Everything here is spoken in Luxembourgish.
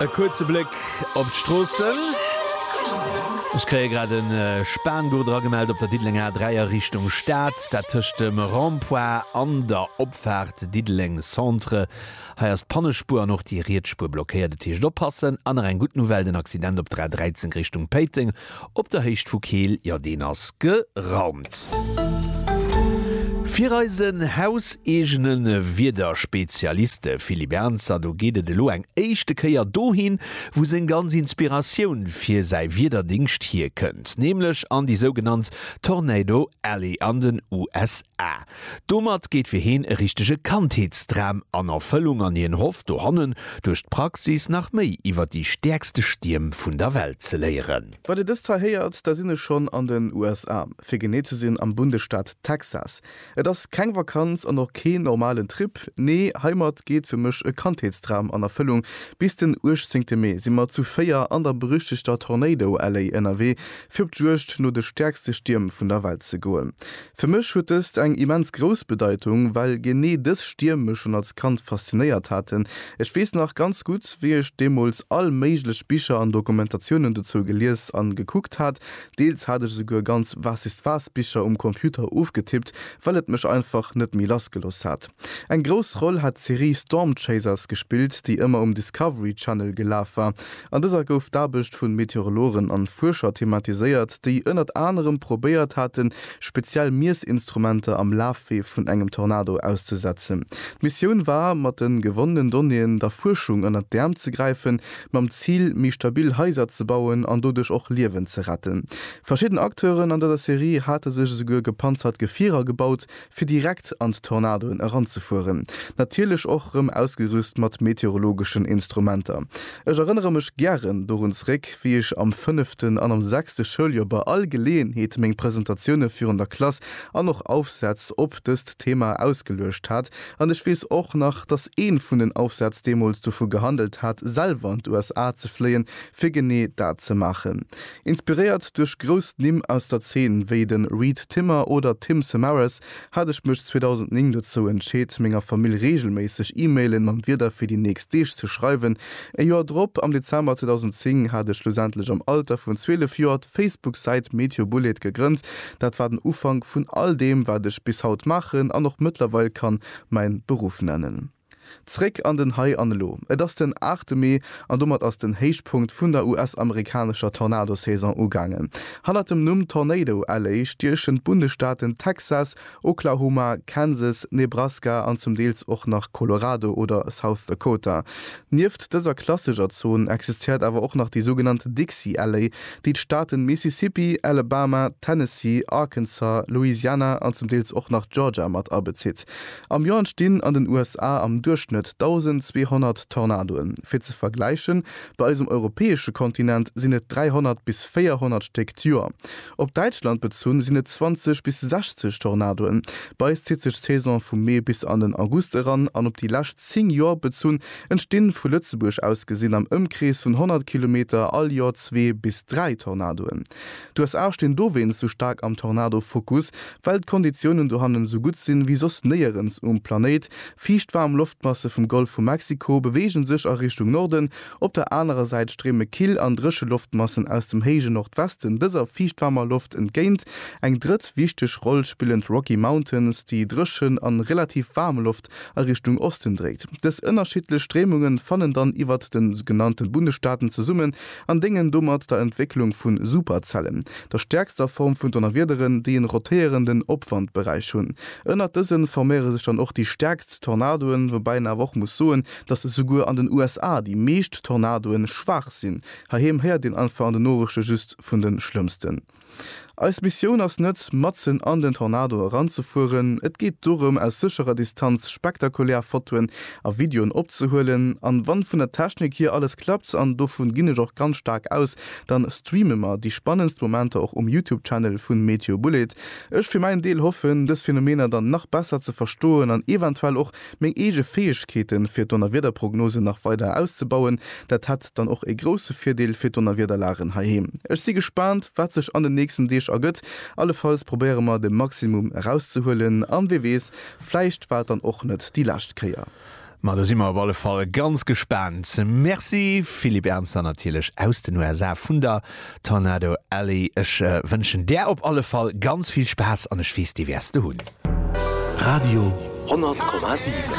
E kuerze Bléck op d'Stroossen. Ech kréie grad e Spango dragemellt op der Diddelenger A3 a Richtung Stad, dat tëscht dem Rond-point an der Opfaart Diddeleng Centre. Hei ass d'Pannespuer an och déi riets Spuer blockéiert. Et heescht oppassen. An nach eng gutt Nouvelle, den Accident op der A13 Richtung Péiteng Op der Héicht vu Keel, jo deen ass geraumt. Fir eisen hauseegene Wiederspezialist, de Philippe Ernzer, do geet et elo eng éischte Kéier dohin, wou seng ganz Inspiratioun fir säi Wiederdingscht hierkënnt, nämlech an déi sougenannt Tornado Alley an den USA. Domat geet fir heen e richtege Kandheetsdram an Erfëllung an hien hofft dohannen, duerch d'Praxis nach méi iwwer déi stäerkste Stierm vun der Welt ze léieren. Wann dir dëst hei héiert, da sinn ech schonn an den USA, fir genee ze sinn am Bundesstaat Texas. Et ass keng Vakanz an och keen normalen Trip, nee heimat geet fir mech e Kandheetsdram an Erfëllung. Bis den 18 Mee si mer zu 4 an der berüchtegter Tornado Alley ënnerwee, fir op d'Juegd no de stäerkste Stierm vun der Welt ze goen. Fir mech huet dëst eng immens grouss Bedeitung, well genee dës Stierm mech schonn als Kand faszinéiert haten. Ech weess nach ganz gutt, wéi ech deemools all méiglech Bicher an Dokumentatiounen dozou gelies an gekuckt hat. Deels hat ech esouguer ganz Was-ist-was-Bicher um Computer ofgetippt, well et mech einfach net méi lassgelooss hat. Eng grouss Roll hat d'Serie Storm Chasers gespillt, déi ëmmer um Discovery Channel gelaf war. An dëser gouf d'Aarbecht vun Meteorologen an Fuerscher thematiséiert, déi ënnert anerem probéiert haten, speziell Miessinstrumenter am Lafwee vun engem Tornado auszesetzen. D'Missioun war, mat den gewonnenen Donnéeën der Fuerschung ënnert d'Äerm ze gräifen, mam Zil, méi stabil Haiser ze bauen an doduerch och Liewen ze retten. Verschidden Acteuren an dëser Serie hate sech esouguer gepanzert Gefierer gebaut, fir direkt an d'Tornadoen eranzefueren, natierlech och rëm ausgerüst mat meteorologeschen Instrumenter. Ech erënnere mech gären dorun zréck, wéi ech am fënneften an am sechste Schouljoer bei all Geleeënheet meng Presentatioune virun der Klass an och Aufsätz op dëst Thema ausgeluecht hat. An ech weess och nach, datt ee vun den Aufsätz deemools dovu gehandelt hat, selwer an d'USA ze fléien, fir genee dat ze maachen. Inspiréiert duerch grouss Nimm aus der Zeen, wéi de Reed Timmer oder Tim Samaras, hat ech mech 2009 dozou entscheet, menger Famill reegelméisseg E-Mailen mam Wieder fir déi nächst Deeg ze schreiwen. E Joer drop, am Dezember 2010, hat ech schlussendlech am Alter vun 12 Joer d'Facebook-Säit MeteoBullet gegrënnt. Dat war den Ufank vun all deem, wat ech bis haut maachen an och mëttlerweil kann mäin Beruff nennen. Zréck an den Hei an Elo. Et ass den aachte Mee an domat ass den Héichpunkt vun der US-amerikanescher Tornado-Saison ugaangen. Hannert dem Numm Tornado Alley stiechen d'Bundesstaaten Texas, Oklahoma, Kansas, Nebraska an zum Deels och nach Colorado oder South Dakota. Nieft dëser klassescher Zon existéiert awer och nach déi sougenannt Dixie Alley, déi d'Staaten Mississippi, Alabama, Tennessee, Arkansas, Louisiana an zum Deels och nach Georgia mat abezitt. Am Joer entstinn an den USA am Duerchschnëtt 1.200 Tornadoen. Fir ze vergläichen, bei eisem europäesche Kontinent sinn et 300 bis 400 Stéck d'Joer. Op Däitschland bezunn sinn et 20 bis 60 Tornadoen. Bei eis zitt sech d'Saison vum Mee bis an den August eran an op déi lescht 10 Joer bezunn entstinn, vu Lëtzebuerg aus gesinn, am Ëmkrees vun 100 Kilometer all Joer zwee bis dräi Tornadoen. D'USA stinn dowéinst sou staark am Tornado-Fokus, Well d'Konditiounen dohannen esou gutt sinn, wéi soss néierens um Planéit. Fiicht waarm Loftmasse vum Golf vu Mexiko beweegen sech a Richtung Norden. Op der anerer Säit stréime kill an dréche Loftmassen aus dem héije Nordwesten dëser fiichtwaarmer Loft entgéint. Eng drëtt wichteg Roll spillen d'Rocky Mountains, déi dréchen an relativ waarm Loft Nord-West a Richtung Osten dréit. Dës ënnerschiddlech Stréimunge fannen dann iwwert de genannte Bundesstaaten zesummen an déngen domat der Entwécklung vu Superzellen, der stäerkster Form vun Donnerwiederen, déi en rotéierenden Opwandberäich hunn. Ënnert dëse forméiere sech dann och déi stäerkst Tornadoen, woubäi een awer och muss soen, datt souguer an den USA déi meescht Tornadoe schwaach sinn. Heiheem héiert een einfach an den Norechte just vun de schlëmmsten. Eis Missioun ass net, matzen an den Tornado eranzefueren. Et geet dorëm, aus sécherer Distanz spektakulär Fotoen a Videoen opzehuelen. An wann vun der Technik hier alles klappt, an dovun ginn ech och ganz staark aus, dann streame mer déi spannendst Momenter och um Youtube Channel vun Météo Bouled. Ech fir mäin Deel hoffen, dës Phänomener dann nach besser ze verstoen an eventuell och Meng eege Fäegkeeten, fir d'Donnerwiederprognosen nach weider auszebauen, dat hätt dann och ee grousse Virdeel fir d'Donnerwiederlagen heiheem. Ech si gespaant, wat sech an den nächsten Deeg ergëtt. Allefalls probéiere mer, de Maximum erauszehuelen. An wee weess, vläicht war et dann och net déi lescht Kéier. Ma do si mer op alle Fall ganz gespaant. Merci, Philippe Ernzer, natierlech aus den USA vun der Tornado Alley, ech wënschen där op alle Fall ganz vill Spaass an ech weess dee wäers de hunn. Radio 100,7.